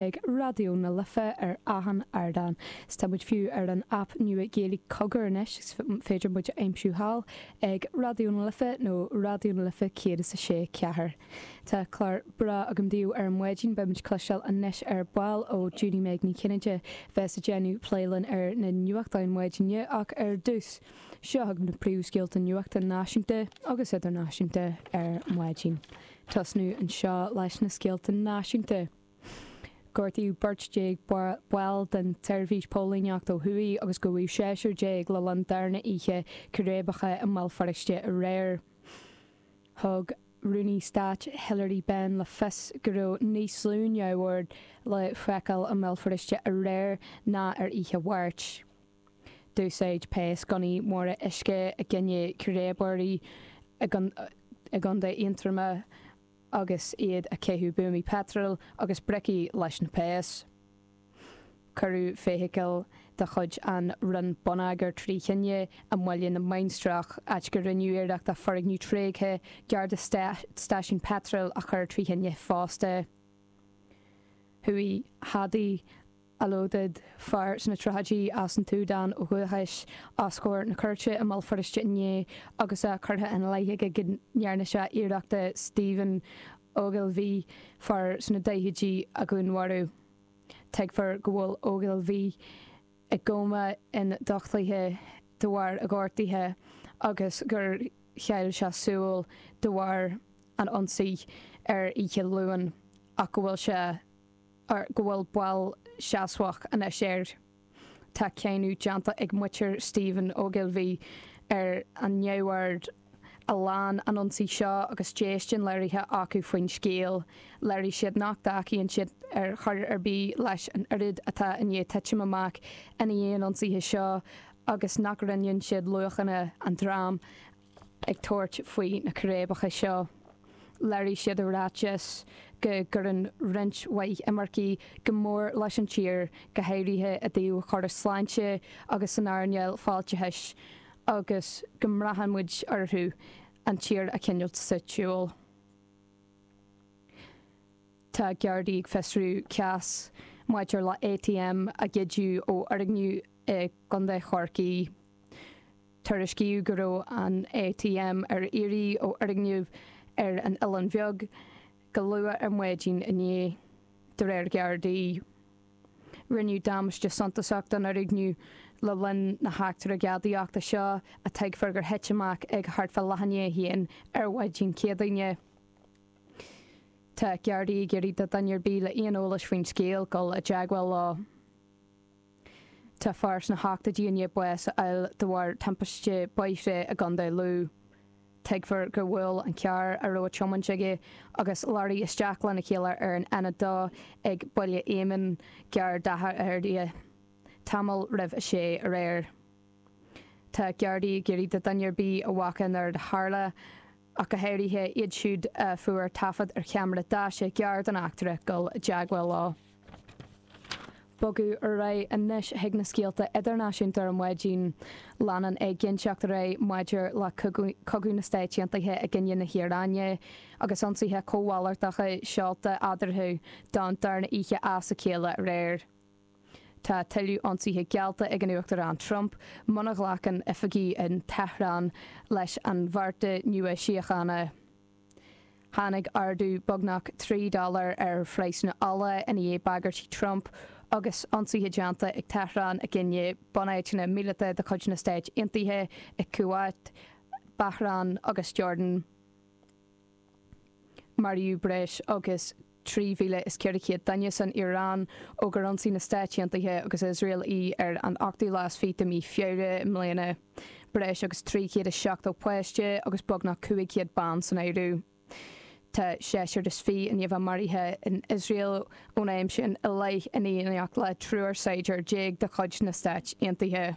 ag Raidió na Life ar achan ardán, 's tá muid fiú ar an aip nua Gaeilge Cogar anois 's féidir muid a aimsiú thall ag Raidió na Life nó Raidió na Life Céad is a Sé Ceathair. Tá clár breá agam daoibh ar maidin, beidh muid ag cloisteáil anois ar ball ó Judy Meg Ní Chinnéide a bheas ag déanamh plé linn ar na nuachtáin maidine ach ar dtús, seo chugaibh na príomhscéalta nuachta náisiúnta agus idirnáisiúnta ar maidin. Tosnú anseo leis na scéalta náisiúnta. Gortaíodh beirt déag ball den tseirbhís póilíneacht ó thuaidh agus gabhadh seisear déag le linn darna oíche círéibeacha i mBéal Feirste aréir. Thug Rúnaí Stáit Hilary Benn le fios go raibh níos lú neamhoird le feiceáil i mBéal Feirste aréir ná ar oíche Mháirt. D'úsáid péas gunnaí móra uisce i gcoinne círéibeoirí i gContae Aontroma. agus iad ag caitheamh buamaí peitril agus bricí leis na péas. Cuireadh feithicil de chuid an Roinn Bonneagair trí thine i mBaile na Mainistreach, áit go rinneadh iarracht foirgneamh tréigthe gar do stáisiún peitril a chur trí thine fosta. Chuaigh Hadi Alodid fear sna tríochaidí as an tSúdáin ó dhúchas, os comhair na cúirte i mBéal Feirste inné agus é curtha ina leith aige go ndearna sé iarracht Stephen Ogilvie, fear sna daichidí, a dhúnmharú. Tuigtear go bhfuil Ogilvie i gcóma ionduchtaithe de bharr a ghortuithe agus gur chaill sé súil de bharr an ionsaí ar oíche Luain ach go bhfuil sé go bhfuil bail seasmhach anois air. Tá cáineadh déanta ag muintir Stephen Ogilvie ar an neamhord a lean an ionsaí seo agus déistin léirithe acu faoin scéal. Léirigh siad nach dtacaíonn siad ar chor ar bith leis an rud atá i ndiaidh titim amach i ndiaidh an ionsaithe seo agus nach roinneann siad luachanna an dream atá ag tabhairt faoi na círéibeacha seo. Léirigh siad i ráiteas go gcuireann roinnt mhaith imircigh go mór leis an tír, go háirithe i dtaobh chóras sláinte agus san earnáil fáilteachais, agus go mbraitheann muid orthu an tír a choinneáilt sa tsiúl. Tá Gardaí ag fiosrú cás maidir le ATM a goideadh ó fhoirgneamh i gContae Chorcaí. Tuairiscíodh go raibh an ATM ar iarraidh ó fhoirgneamh ar an Oileán Bheag go luath ar maidin inné. De réir Ghardaí, rinneadh damáiste suntasach don fhoirgneamh le linn na heachtra gadaíochta seo a tuigtear gur thit amach ag thart fá leath i ndiaidh a haon ar mhaidin Chéadaoine. Tá Gardaí ag iarraidh ar dhuine ar bith le haon eolais faoin scéal dul i dteagmháil leo. Tá fear sna hochtoidí i ndiaidh bás a fháil de bharr timpiste bóthair i gContae Lú. Tuigtear gur bhuail an carr a bhí á thiomáint aige agus leoraí isteach lena chéile ar an N2 ag Baile Éamainn gar d'Áth Fhirdhia, tamall roimh a sé aréir. Tá Gardaí ag iarraidh ar dhuine ar bith a bhfaca an rud a tharla, ach go háirithe iad siúd a fuair taifead ar cheamara deaise gar don eachtra, dul i dteagmháil leo. Bogadh ar aghaidh anois chuig na scéalta idirnáisiúnta ar maidin. Leanann éiginnteacht ar aghaidh maidir le cogadh na Stáit Aontaithe i gcoinne na hIaráine, agus ionsaithe comhalartacha seolta eadarthu, don darna hoíche as a chéile aréir. Tá tuilleadh ionsaithe geallta ag an Uachtarán Trump muna ghlacann oifigigh in Tehran leis an bheart nua síochána. Tháinig ardú beagnach trí dhollar ar phraghsanna ola i ndiaidh bagairtí Trump agus ionsaithe déanta ag Tehran i gcoinne bunáiteanna míleata de chuid na Stáit Aontaithe i Kuwait, Bahrain agus Jordan. Maraíodh breis agus 3,400 duine san Iaráin ó gur ionsaigh na Stáit Aontaithe agus Iosrael í ar an ochtú lá is fiche de mhí Feabhra i mbliana. Breis agus 370 páiste agus beagnach 500 bean san áireamh. Tá seisear is fiche in iomlán maraithe in Iosrael ón am sin i leith in éineacht le triúr saighdiúir déag de chuid na Stáit Aontaithe.